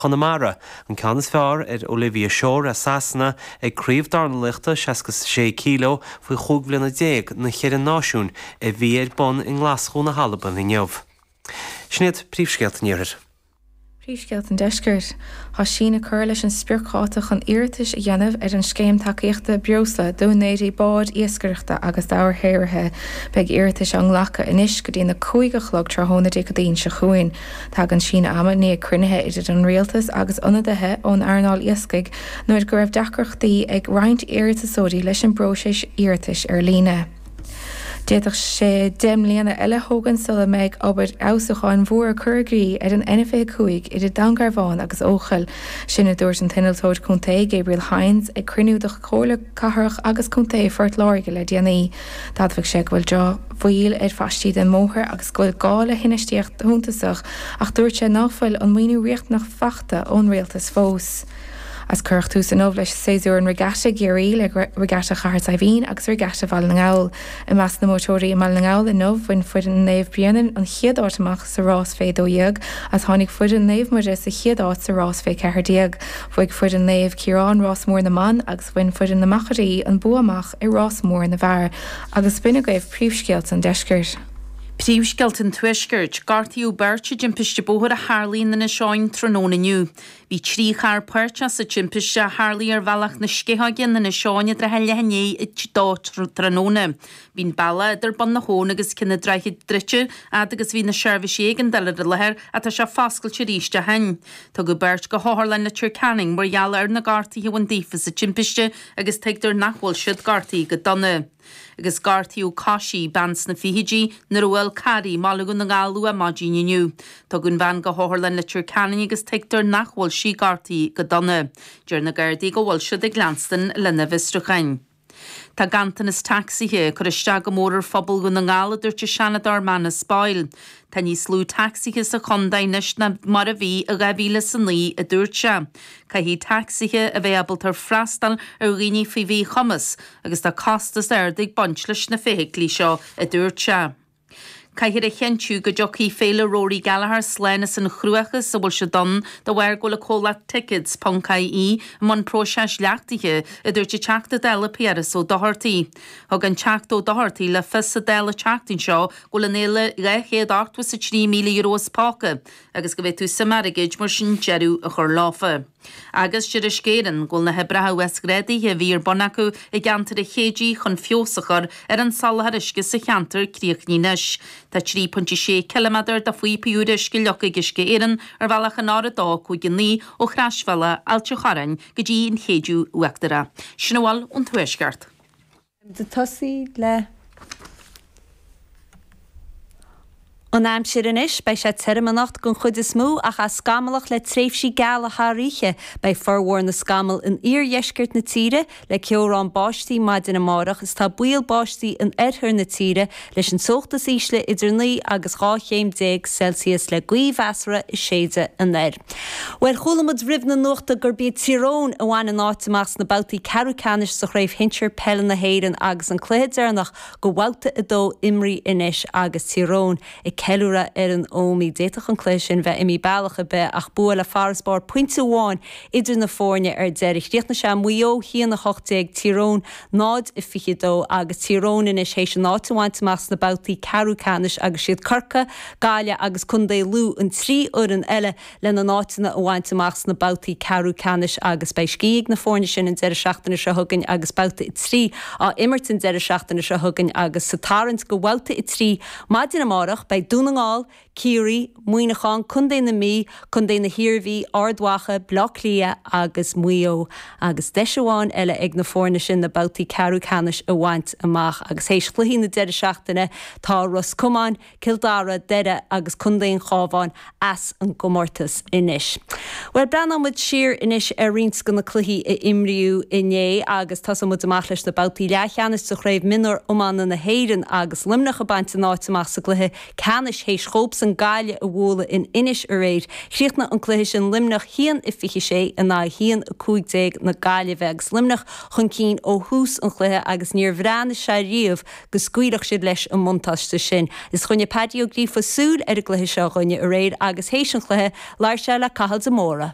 Chonamara, an ceann is fearr ar Olivia Shore ó Sasana ag Craobh Dornalaiochta 66 kilo faoi chúig bhliana déag na gCeithre Náisiún a bhí ar bun i nGlaschú na hAlban inniu. Sin iad príomhscéalta an Iarthair. Príomhscéalta an Deiscirt. Tá síneadh curtha leis an spriocdháta chun iarratais a dhéanamh ar an Scéim Tacaíochta Breosla d'úinéirí bád iascaireachta agus dobharshaothraithe. Beidh iarratais á nglacadh anois go dtína 5 a chlog tráthnóna Dé Céadaoin seo chugainn. Tagann an síneadh ama i ndiaidh cruinnithe idir an Rialtas agus ionadaithe ón earnáil iascaigh nuair a dúradh go raibh deacrachtaí ag roinnt iarratasóirí leis an bpróiseas iarratais ar líne. D'fhéadfadh sé deich mbliana eile a thógaint sula mbeidh obair fheabhsúcháin mhór curtha i gcrích ar an N25 idir Dún Garbhán agus Eochaill. Sin a dúirt an t-Innealtóir Contae, Gabriel Hynes, ag cruinniú de Chomhairle Cathrach agus Contae Phort Láirge le déanaí. D'admhaigh sé go bhfuil drochbhail ar phaistí den mbóthar agus go bhfuil gá le hinfheistíocht shuntasach ach dúirt sé ná fuil an maoiniú riachtanach faighte ón Rialtas fós. Is cuireadh tús inniu leis Séasúr an Regatta i gCiarraí le Regatta Chathair Saidhbhín agus Regatta Bhaile na nGall. I measc na mbuaiteoirí i mBaile na nGall inniu bhain foireann Naomh Bréanainn an chéad áit amach sa rás fé 12 is tháinig foireann Naomh Muire sa chéad áit sa rás fé 14. Bhuaigh foireann Naomh Ciarán Rás Mór na mBan agus. Bhain foireann na Machairí an bua amach i rás mór na bhfear agus b'in agaibh príomhscéalta an deiscirt. Príomhscéalta an tuaiscirt. Gortaíodh beirt i dtimpiste bóthair a tharlaigh in Inis Eoghain tráthnóna inniu. Bhí trí charr páirteach sa timpiste a tharlaigh ar bhealach na Sceitheoige in Inis Eoghain i dtrátha leath i ndiaidh a 2 tráthnóna. Bhí an bealach idir Bun na h-Abhann agus Ceann an Droichid druidte fhad agus bhí na seirbhísí éigeandála ar an láthair ach tá sé foscailte arís ó shoin. Tugadh beirt go hOtharlann Leitir Ceanainn mar gheall ar na gortaithe a bhain daofa sa timpiste agus tuigtear nach bhfuil siad gortaithe go dona. Agus gortaíodh coisí, bean sna fichidí, nuair a bhuail carr í i mBaile Dhún na nGall luath maidin inniu. Tugadh an bhean go hOtharlann Leitir Ceanainn agus tuigtear nach bhfuil sí gortaithe go dona. Deir na Gardaí go bhfuil siad ag leanstan lena bhfiosrúcháin. Tá ganntanas tacsaithe ag cur isteach go mór ar phobal Dhún na nGall a dúirt an Seanadóir Manus Boyle. Tá níos lú tacsaithe sa chontae anois ná mar a bhí i dhá mhíle is a naoi a dúirt sé. Caithfidh tacsaithe a bheith ábalta freastal ar dhaoine faoi mhíchumas agus tá costas ard ag baint leis na feithiclí seo a dúirt sé. Caithfear a chinntiú go dtiocfaidh Féile Rory Gallagher slán as an chruachás a bhfuil siad ann de bharr go bhfuil an comhlacht Tickets Ponc IE i mbun próiseas leachtaithe, a dúirt an Teachta Dála Piaras Ó Dochartaigh. Thug an Teachta Ó Dochartaigh le fios sa Dáil an tseachtain seo go bhfuil an fhéile €283,000 as póca agus go bhféadfadh suim airgid mar sin deireadh a chur leofa. Agus deir Uisce Éireann, go bhfuil na hoibreacha uasghrádaithe a bhí ar bun acu i gceantar an Chéididh chun feabhas a chur ar an soláthar uisce sa cheantar críochnaithe anois. Tá 3.6 km de phaíopaí úra uisce leagtha ag Uisce Éireann ar bhealach an R259 ó Chroisbhealach Ailt an Chorráin go dtí an Chéideadh Uachtarach. Sin a bhfuil ón Tuaisceart. An aimsir anois, beidh sé tirim anocht den chuid is mó ach á scamallach le tréimhsí geala thar oíche. Beidh formhór na scamall in iardheisceart na tíre, le ceobhrán báistí maidin amárach is tá baol báistí in oirthear na tíre Leis an teocht is ísle idir naoi agus dhá chéim déag Celsius le gaoth mheasartha ag séideadh aniar. Bhuel chuala muid roimh na nuachta gurb iad Tír Eoghain a bhain an áit amach sna babhtaí ceathrú ceannais sa chraobh shinsir peile na hÉireann agus an cluiche deireanach go bhabhta a dó imrithe anois agus Tír Eoghain ag ceiliúradh ar an Ómaí. D'fhéadfadh an cluiche sin bheith imithe bealach ar bith ach bua le farasbarr pointe amháin idir na foirne ar deireadh. Chríochnaigh sé Maigh Eo, a haon 18, Tír Eoghain. 0-22 agus Tír Eoghain anois théis a n-áit a bhaint amach sna babhtaí ceathrú ceannais agus 'siad Corcaigh, Gaillimh agus Contae Lú an trí fhoireann eile lena n-áiteanna a bhaint amach sna babhtaí ceathrú ceannais agus beidh scíth ag na foirne sin an deireadh seachtaine seo chugainn agus Babhta 3 á imirt an deireadh seachtaine seo chugainn agus sa tarraingt do bhabhta 3 maidin amárach beidh Dún na nGall, Ciarraí, Muineachán, Co na Mí, Co na hIarmhí, Ard Mhacha, Baile Átha Cliath agus Maigh Eo agus deis amháin eile ag na foirne sin na babhtaí ceathrú ceannais a bhaint amach agus théis chluichí na deireadh seachtaine tá Ros Comáin, Cill Dara, Doire agus Contae an Chábháin as an gcomórtas anois. Bhuel breathnóidh muid siar anois ar roinnt de na cluichí a imríodh inné agus tosóidh muid amach leis na babhtaí leathcheannais sa Chraobh Mionúr Iomána na hÉireann agus Luimneach ag baint a n-áit amach sa gcluiche ceannais théis dhóibhsan Gaillimh a bhualadh in Inis aréir. Chríochnaigh an cluiche sin Luimneach a haon a 26 in aghaidh a haon a 15 na Gaillimhe agus Luimneach chun cinn ó thús an chluiche agus níor bhreathnaigh sé ariamh go scaoilfeadh siad leis an mbuntáiste sin. Is choinnigh Paddy Ó Gríofa súil ar an gcluiche seo dhúinne aréir agus théis an chluiche labhair sé le Cathal de Mórdha.